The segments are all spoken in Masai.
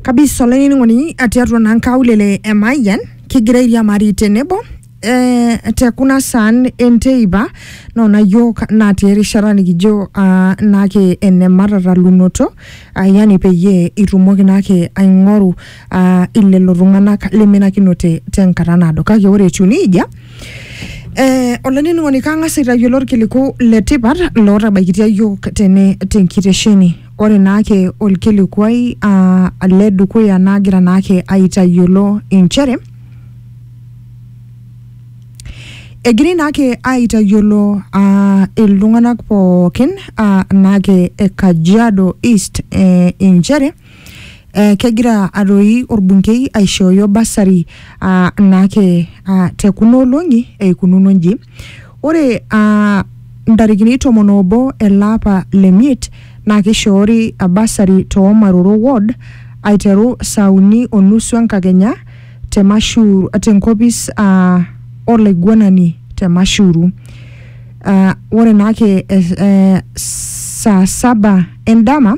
Kabisa olainining'oni tiatua naa nkaulele e Mayian kigira airiamari tenebo eh, te kuna saan enteipa nona yiok natii erishata nikijo ah, naake ene matatalunoto ah, yani peyie itumoki naake aing'oru ah, ilelo tung'anak lemenakinote tenkata naado kake ore etiu neijia Eh, olainining'oni kang'as aitayiolo orkiliku le tipat lootabaikitia yiok tene tenkitesheni ore naake olkilikuai ah, le dukuya naagira naake aitayiolo inchere egirai naake aitayiolo ah, iltung'anak pookin ah, naake e Kajiado East eh, inchere Eh, kegira atoi orbunkei aishooyo basari ah, naake ah, te kuna olong'i eikununo nji ore ah, ntarikini tomon obo ele apa le miet naa keishoori ah, basari too maroro ward aiteru saa uni o nusu enkakenya te mashu tenkopis ah, olaiguanani te mashuru Ah, ore naake eh, eh, saa saba endama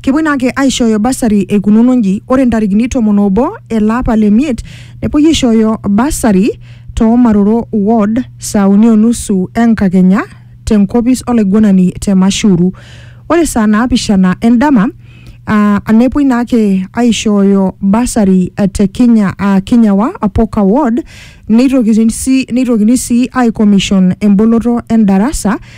Kepuoi naa ake aishooyo basari eikununo nji, ore ntarikini tomon oobo ele apa le miet nepuoi aishooyo basari too Maroro ward saa uni o nusu enkakenya te nkopis olaiguanani te Mashuru. Ore saa naapishana endama aa nepuoi naa ake aishooyo basari te Kinya aa Kinyawa Apoka ward neitokini sii neitokini sii aikomishon emboloto endarasa